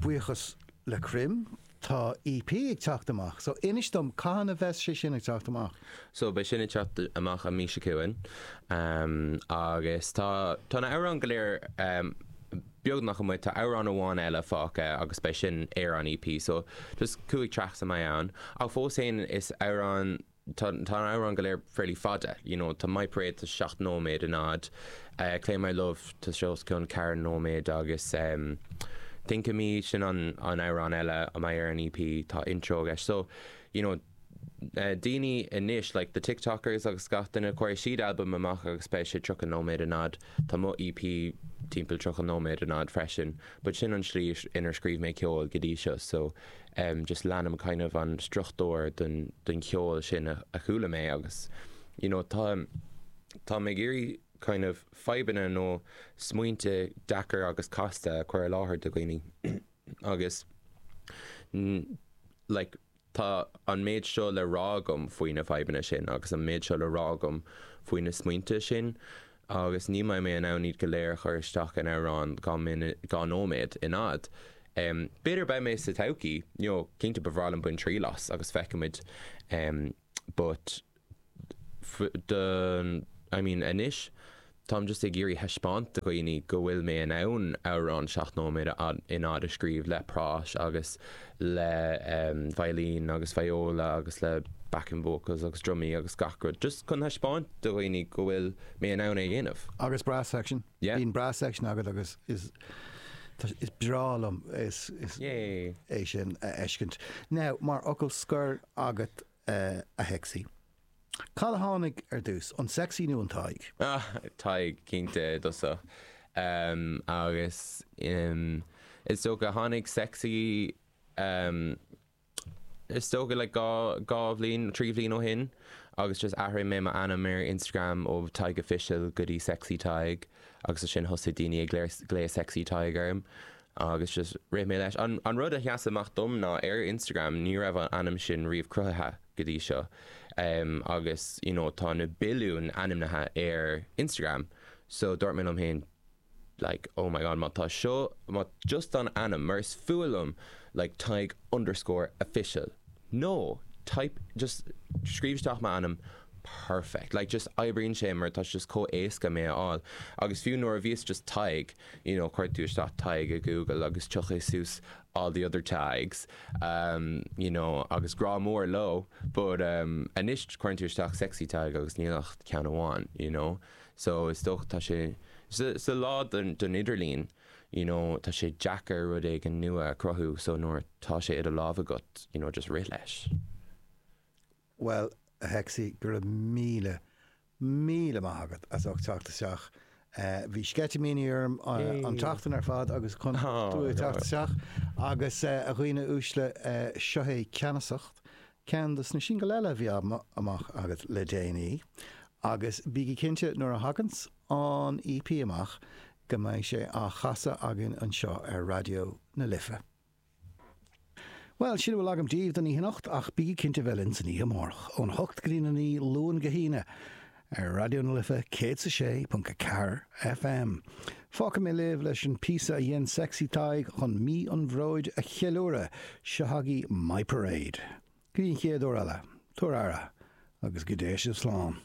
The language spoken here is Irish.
buíochas le cruim tá EP ag teacht amach so inis dom cathain a bheas sé sin ag teacht amach? So beidh sin ag teacht amach an mí seo chugainn agus tá tá na hamhráin go léir beagnach amuigh, tá amhrán amháin eile fágtha agus beidh sin ar an EP so just cúig tracks a mbeidh ann ach fós féin is amhrán Tá na hamhráin go léir fairly fada, you know, tá My Parade, tá sé seacht nóiméad in fhad, Claim My Love, tá sé os cionn ceithre nóiméad agus ehm Think of Me, sin an an amhrán eile a mbeidh ar an EP, tá intro aige so, you know, eh daoine anois like the tiktokers agus gach duine, cuirfidh siad album amach agus beidh sé tríocha nóiméad in fhad, tá mo EP timpeall tríocha nóiméad in fhad freisin but sin an tslí inar scríobh mé ceol go dtí seo so, em just leanaim kind of an struchtúr den den cheol sin a a chuala mé agus you know tá tá mé ag iarraidh kind of fadhbanna nó smaointe deacair agus casta a chur i láthair do dhaoine agus like tá an méid seo le rá agam faoi na fadhbanna sin agus an méid seo le rá agam faoi na smaointe sin agus ní bheidh mé in ann iad go léir a chur isteach in amhrán dhá nóiméad in fhad. B'fhéidir beidh mé sa todhchaí, you know, cinnte ba bhreá liom bain triail as agus feicfimid but dom, I mean anois táim just ag iarraidh thaispeáint do dhaoine go bhfuil mé in ann amhrán seacht nóiméad in fhad a scríobh le prás agus le veidhlín agus viola agus le backing vocals agus drumaí agus gach rud just chun thaispeáint do dhaoine go bhfuil mé in ann é a dhéanamh. Agus brass section. Yeah. Bíonn brass section agat agus is is breá liom is is é sin a fheiscint. Now, mar fhocal scoir agat a Shexy. Cad a tháinig ar dtús, an sexy nó an Tadhg? Ah, Tadhg, cinnte, i dtosach. Agus is dócha tháinig sexy, is dócha like dhá, dhá bhliain, trí bhliain ó shin agus just athraigh mé m'ainm ar Instagram ó TadhgOfficial go dtí sexytadhg agus ansin thosaigh daoine ag glaoch sexy Tadhg orm Agus just rith mé leis. An rud a sheas amach dom ná ar Instagram ní raibh an ainm sin riamh cruthaithe go dtí seo. Agus you know tá na billiúin ainmneacha ar Instagram so dúirt mé liom féin like oh my god má tá seo, má just an ainm mar is fuath liom like Tadhg underscore official nó type just scríobh isteach m'ainm perfect like just oibríonn sé mar tá sé just chomh éasca mé a fháil agus fiú nuair a bhí sé just Tadhg you know cuir tú isteach Tadhg i Google agus tiocfaidh suas all the other Tadhgs um you know agus grá mór leo but um anois cuireann tú isteach Sexy Tadhg agus níl ach ceann amháin you know so is dócha tá sé sa lá den idirlíon you know tá sé deacair rud éigin nua a chruthú so nuair tá sé i do lámh agat you know just rith leis. Bhuel, a Shexy, go raibh míle, míle maith agat as ucht teacht isteach. Bhí sceitimíní orm an tseachtain ar fad agus chun tú a teacht isteach. Agus, a dhaoine uaisle, seo é Ceannasacht, ceann dos na singil eile a bhí amach agat le déanaí. Agus bígí cinnte, nuair a thaganns an EP amach, go mbeidh sé á chasadh againn anseo ar Raidió na Life. Bhuel, sin a bhfuil agam daoibh don oíche anocht, ach bígí cinnte bheith linn san oíche amáireach, ón hocht go dtí na naoi, Luan go hAoine, ar Raidió na Life 106.4 FM. Fágfaidh mé libh leis an píosa a dhein Sexy Tadhg chun Mí an Bhróid a cheiliúradh, seo chugaibh My Parade. Go dtí an chéad uair eile, tabhair aire, agus go dté sibh slán.